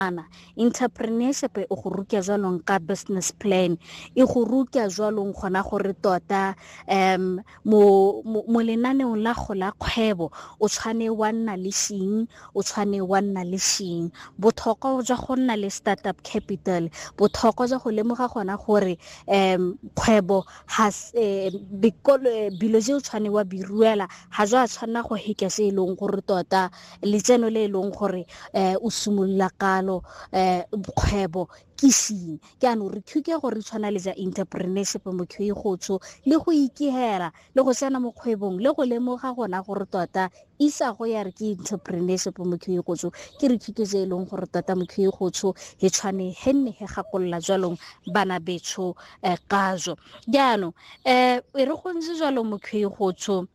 Ana, Intapreneershipe e go ruka jwalong ka business plan, e go ruka jwalong gona gore tota um mo, mo, mo lenaneong la go la kgwebo o tshwane wa nna le shing, o tshwane wa nna le shing. Bothoko jwa go nna le startup capital, bothoko jwa go lemoga gona gore um kgwebo has eh, bikolo eh, bilo je o tshwane wa biruela ha jwa tshwanna go hika se e leng gore tota letseno le e leng gore um o simolola kalo um kgwebo ke seng ke ano re thuke gore tshwana le ja entrepreneurship motho e gotsho le go ikegela le go tsena mo kgwebong le go lemoga gona gore tota isa go ya re ke entrepreneurship motho e gotsho ke re thuto tse e leng gore tota motho e gotsho e tshwane he nne he gakolola jwalong bana betsho um kajo jaanong um e re gontse jalo motho e gotsho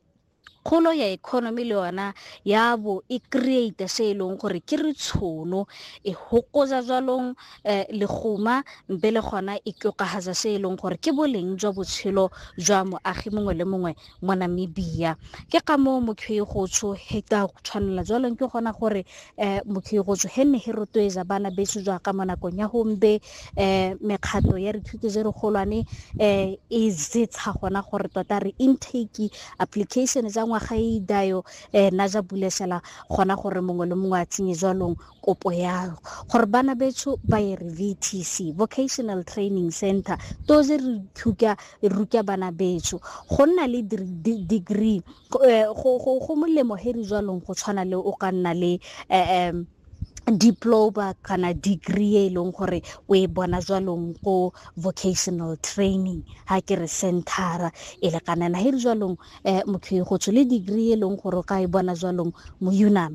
Kgolo ya economy le yona ya bo e create se e leng gore ke re tshono e hokoza jwalong eh, leguma mpe le gona e tlokagatsa se e leng gore ke boleng jwa botshelo jwa moagi mongwe le mongwe mo namibia ke ka moo mokhwegotsho heta tshwanela jwalong ke gona gore eh, mokhirotso he nne he rotloetsa bana beso jaaka mo nakong ya gombe eh, mekgato ya dithuto je re golwane eh, e zetsha gona gore tota re intake application tsa ngwaga e idayo eh, na ja bulesela gona gore mongwe le mongwe a tsenye jwalong kopo ya gore bana beso ba ye re vtc vocational training center to je re thuka ruka bana beso go nna le degree go molemo he re jwalong go tshwana le o ka nna le um diploma kana degree e leng gore o e bona jwalong ko vocational training ha ke re centera e lekanana he re jwalong um motho e gotsho le degree e leng gore o ka e bona jwalong mo unam